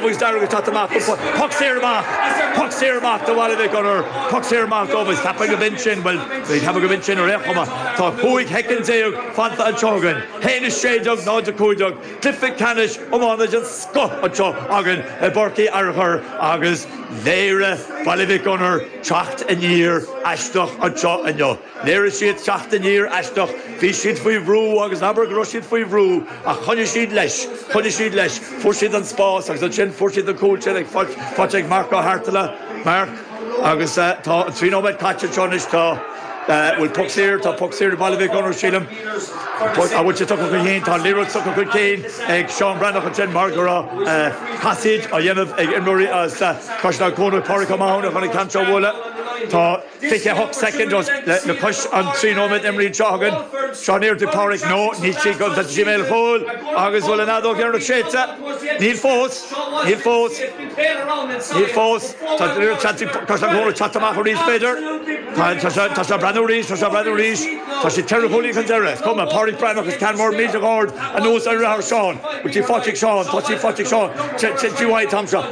Muid dearg ag teacht amach go Puc saor amach! Puc saor amach do Bhaile Mhic Gonair! Puc saor amach dóibh is ceapaim go b'in sin, bhuel, ceapaim go b'in sin ar aon chuma. Tá cúig shoicind déag fanta anseo againn. Haon a sé déag, náid a cúig déag. Cluiche ceannais iomána den scoth anseo againn i bPáirc Uí Fhearchair agus léirigh Baile Mhic Gonair teacht aniar aisteach anseo inniu. Léirigh siad teacht aniar aisteach, bhí siad faoi bhrú agus abair go raibh siad faoi bhrú ach choinnigh siad leis, choinnigh siad leis, fuair siad an spás agus ansin fuair siad an cúl sin ag, faighte, faighte ag Marc Ó hArtghaile, Marc agus eh tá an trí nóiméad caite anseo anois, tá eh bhfuil puc saor, tá puc saor ag Baile Mhic Gonair sílim, puc, an bhfuil sé tugtha chun cinn, tá an liathróid tugtha chun cinn ag Seán Breathnach ansin mar go raibh eh casaoid á dhéanamh ag imreoirí as eh Caisleán Cuanach, Pádraig Ó Mathúna chun an ceann seo a bhualadh, tá. 28 seconds le cois an trí nóiméad imrithe anseo againn Seán Éard Uí Phádraig No níl sí go Tá sí mé chúil agus bhfuil an fheadóg dheiridh séidte Níl fós Níl fós Níl fós Tá riar seansaí Caisleán Cuanach ag teacht amach arís b'fhéidir Tá Tá sé Tá sé á breathnú arís Tá sé á breathnú arís Tá sé ceithre chúilín chun deiridh Is cuma Pádraig Breathnach is ceann mór millteach go hard anuas ar fhreagra Seán Go dtí Phátraic Seán Phátraic Phátraic Seán T T T T Y Tom Seán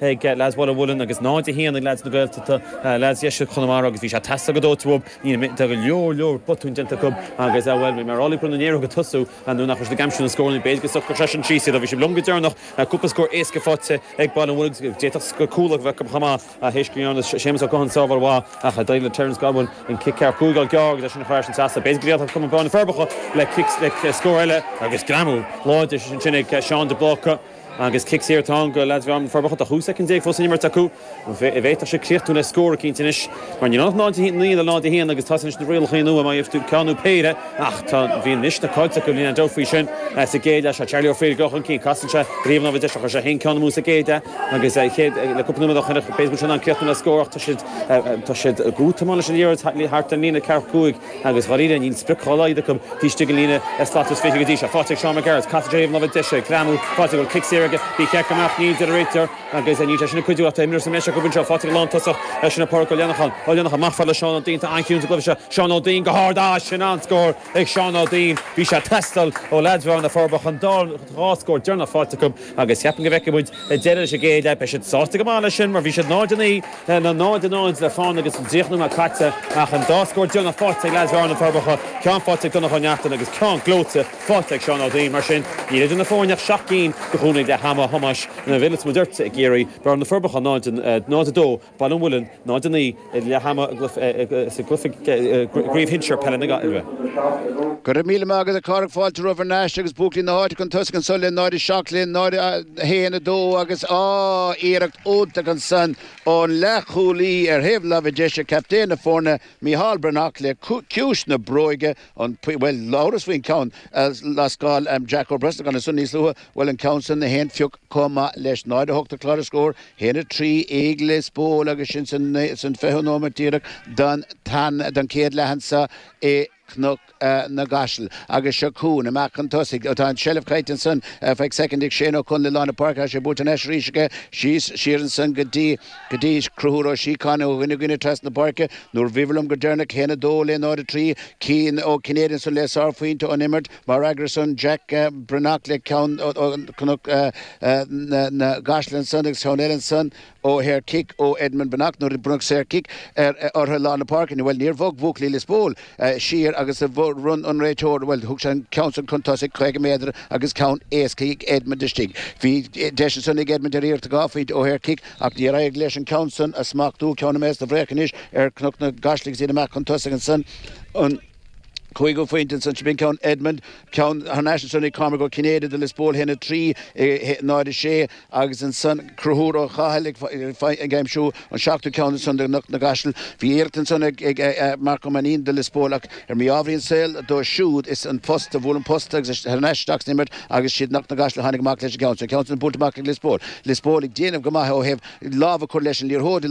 ag leaids Bhaile Mhuilinn agus 0, 1 ag leaids na Gaeltachta, leaids dheisceart Chonamara agus bhí sé ag teastáil go dóite uathu. Níl mé, tá go leor, leor botúin déanta acu agus, bhuel, bhí mé ag rá leo go raibh na néaróga ag tosú nuair nach raibh siad ag aimsiú na scóranna, b'fhéidir go socródh sé sin síos iad ach bhí siad liom go deireanach. Cúpla scór éasca faighte ag Baile Mhuilinn agus d'fhéadfadh scór cúl a bheith acu chomh maith théis go ndearna Séamus Ó Catháin sábháil mhaith ach d'éirigh le Terence Godwin an cic ceathracha cúig a fháil gearr agus é sin a chur ar an seasamh. B'fhéidir go bhféadfadh cumann Bhearna na Forbacha le cic, le scór eile agus greamú láidir ansin ag Seán de Bláca. Agus cic saor atá ann go leaids Bhearna na Forbacha, 12 shoicind fós le n-imirt acu. An bhféadfadh sé críochnú le scór eicínt anois? Mar níl ann ach 0-9 le 0-1 agus tá anois na rialacha nua, má gheibhtear ceann nó péire, ach tá, bhí anois na Colts acu, níl aon dabht faoi sin. Sa gcéad leath seo Charlie O'Frieda go chun cinn. Casann sé riamh anall bhí deis a chuir sé fhéin ceann amú sa gcéad leath agus chéad le cúpla nóiméad á choinneáil. B'fhéidir go bhfuil sé in ann críochnú le scór ach tá siad, tá siad go mall leis an liathróid thart ar an líne ceathracha cúig. agus dháiríre níl sprioc dhá laghad acu taobh istigh den líne slat is fiche go dtí seo. Faighte ag Seán Mac Gearailt, casadh i dtreo thaobh na láimhe deise, ag greamú faighte, an bhfuil cic saor aige. Bhí sé ag ceapadh go mbeadh, níl a deir an réiteoir agus níl sé sin ag cuidiú ach tá imreoir sa mbreis acu anseo. Faighte ag an lántosach leis sin ag Pádraic Ó Leanacháin. Ó Leanacháin, amach fada le Seán Ó Duinn, atá an-chiúin sa gcluiche seo. Seán Ó Duinn, go hard, ah sin an-scór ag Seán Ó Duinn. Bhí sé ag teastáil ó leaids Bhearna na Forbacha, chun dhá scór deireanach faighte acu. Agus ceapaim go bhfeicfidh muid deireadh leis an gcéad leath. Beidh siad sásta go maith leis sin mar bhí siad 0-9 le 0-0 le fána agus an tríocha nóiméad caite ach an dá scór deireanach faighte ag leaids Bhearna na Forbacha, ceann faighte ag Donncha Ó Neachtain agus ceann gleoite faighte ag Seán Ó Duinn. Mar sin níl idir na foirne ach seacht gcinn go Chorn ag leath ama Thomáis Bhil is Muirthe i gCiarraí, Bearna na Forbacha 0-2, Baile an Mhuilinn, 0, 9 leath ama i gcraobh shinsir peile na Gaillimhe. Go raibh míle maith agat a Phádraig, fáilte romhat thar n-ais agus buachaillí na háite chun tosaigh anso le 0, 7 linn, 0, 1, 2 agus, á, iarracht iontach ansan ón leath-chúlaí ar thaobh láimhe deise captaen na foirne, Micheál Breathnach le ciumhais na bróige. An Pointe, Bhuel, labhras faoin gceann a lascáil Jack Ó Brosnacháin ansan níos luaithe, bhuel an ceann san gach aon phioc chomh maith leis, 0:08 ar chlár na scór, 1:03 ag Lios Póil agus sin san fiche nóimeat díreach don tan don chéad leath ansan i gCnoc na gCaiseal. Agus seo chugainn, amach chun tosaigh, ó tá an tseilbh caillte ansan, ar feadh soicind ag Shane Ó Connla i lár na páirce, tá sé buaite anois arís aige, síos siar ansan go dtí. Go dtí Conchúr Ó Síocháin ó dhuine go duine trasna na páirce. Nuair bhíomair libh go deireanach 1 2 le 0 3, Cian Ó Cinnéide ansan le sár phointe ón imirt. Mar fhreagra san, Jack Breathnach le ceann ó Chnoc na gCaiseal ansan agus ceann eile ansan ó shaor cic ó Edmund Breathnach nuair a bronnadh saor cic ortha i lár na páirce. Bhuel níor bhog buachaillí Lios Póil siar agus bhronn an réiteoir, bhuel thug sé an ceann san chun tosaigh 50 méadar agus ceann éasca ag Edmund istigh. Bhí deis ansan ag Edmund ar iarracht 2 phointe ó shaor cic. Ach níor éirigh leis an ceann san a smachtú, ceann a mbeas do bhréagh anois ar Chnoc na gCaiseal agus iad amach chun tosaigh ansan an cúigiú phointe ansan. Sin é an ceann Edmund, ceann thar n-ais ansan ag Cormac Ó Cinnéide do Lios Póil, 1, 3, 0, 6, agus ansan Conchúr Ó Cathail ag aimsiú an seachtú ceann ansan do Chnoc na gCaiseal. Bhí iarracht ansan ag Marc Ó Mainnín do Lios Póil ach. Ar mhí-ámharaí an tsaoil dó siúd is an post a bhuail an post agus é thar n-ais isteach san imirt agus is iad Cnoc na gCaiseal a tháinig amach leis an gceann sin. An ceann sin buailte amach ag Lios Póil. Lios Póil ag déanamh go maith ó thaobh lámh a chur leis an liathróid,